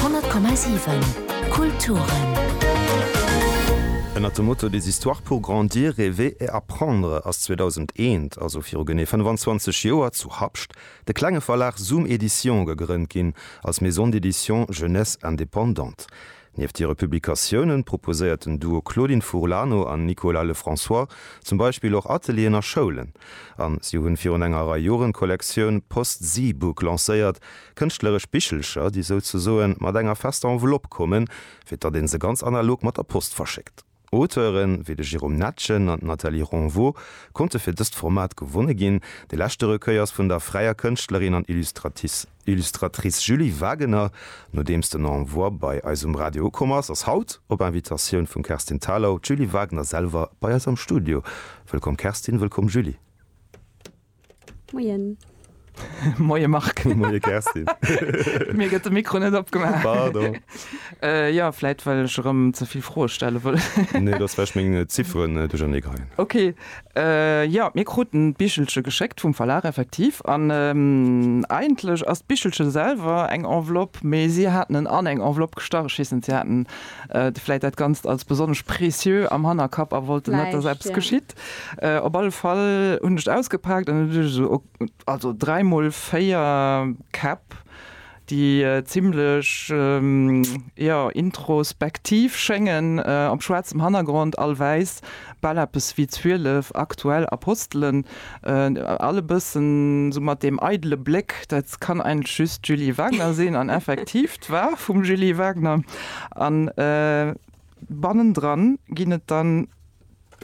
100,7 Kulturen. Ënnert dem Motto Des histoires pour grandir, rêver et apprendre ass 2001, also viru genee 25 Joer, zu Habscht de klenge Verlag Zoom Edition gegrënnt ginn, als Maison d'édition Jeunesse indépendante. Nieft hire Publikatiounen proposéiert den Duo Claudine Furlano an Nicolas Lefrançois zum Beispill och Atelieren a Schoulen. A si hunn virun enger Rei Joren d'Kollektioun Post Zeebook lancéiert, kënschtleresch Bichelcher, déi souzesoen mat enger fester Enveloppe kommen, fir datt ee se ganz analog mat der Post verschéckt. Auteure wéi de Jérôme Netgen an d'Nathalie Renveau konnte fir dëst Format gewonne ginn. De leschte Recueil ass vun der fräier Kënschtlerin an Illustratrice Julie Wagener. Nodeems den Envoi bei eis um Radio ukomm ass, ass haut, op Invitatioun vum Kerstin Thalau, d'Julie Wagener selwer bei eis am Studio. Wëllkomm Kerstin, wëllkomm Julie. Moien. Moie Marc. Moie Kerstin. Mir gëtt de Mikro net opgemaach. Pardon. Jo, vläit well ech erëm ze vill Froe stelle wëll. Nee, dass vläicht meng Zifferen duerchernee geheien. Ok. Jo, mir kruten d'Bichelche geschéckt vum Verlag, effektiv. An eigentlech ass d'Bichelche selwer eng Enveloppe, mee si haten en an eng Enveloppe gestach. Ech weess net, si haten vläicht dat Ganzt als besonnesch précieux am Hannerkapp a wollten net, dass eppes geschitt. Op alle Fall hunn ech et ausgepaakt an et hunn ech esou, also dräi mol véier Käpp, déi zimmlech, jo, introspektiv schéngen, op schwaarzem Hannergrond, all wäiss, bal eppes wéi zwielef aktuell Apostelen, all e bëssen esou mat deem eidele Bléck, dat kann eigentlech just d'Julie Wagner sinn, an effektiv, d'War vum Julie Wagner. An bannendran ginn et dann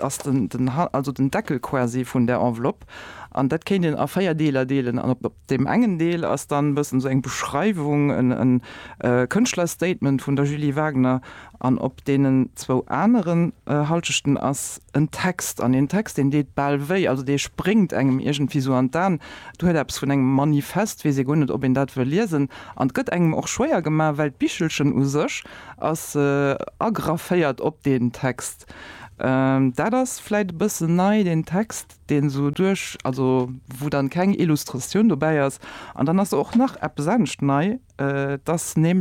ass den ha also den Deckel quasi vun der Enveloppe an dat kéint een a véier Deeler deelen an op op deem engen Deel ass dann bëssen esou eng Beschreiwung, en en Kënschtlerstatement vun der Julie Wagner an op deenen zwou aneren Halschechten ass en Text an deen Text deen deet bal wéi, also dee spréngt engem iergendwéi esou an d'An, et huet eppes vun engem Manifest, weess ee guer net ob een dat wëll liesen an et gëtt engem och schwéier gemaach well d'Bichelchen u sech ass agrafféiert op deen Text. Text. Dat ass vläit e bëssen nei, deen Text, deen esou duerch, also wou dann keng Illustratioun dobäi ass. An dann ass och nach eppes anescht nei, dass nämlech.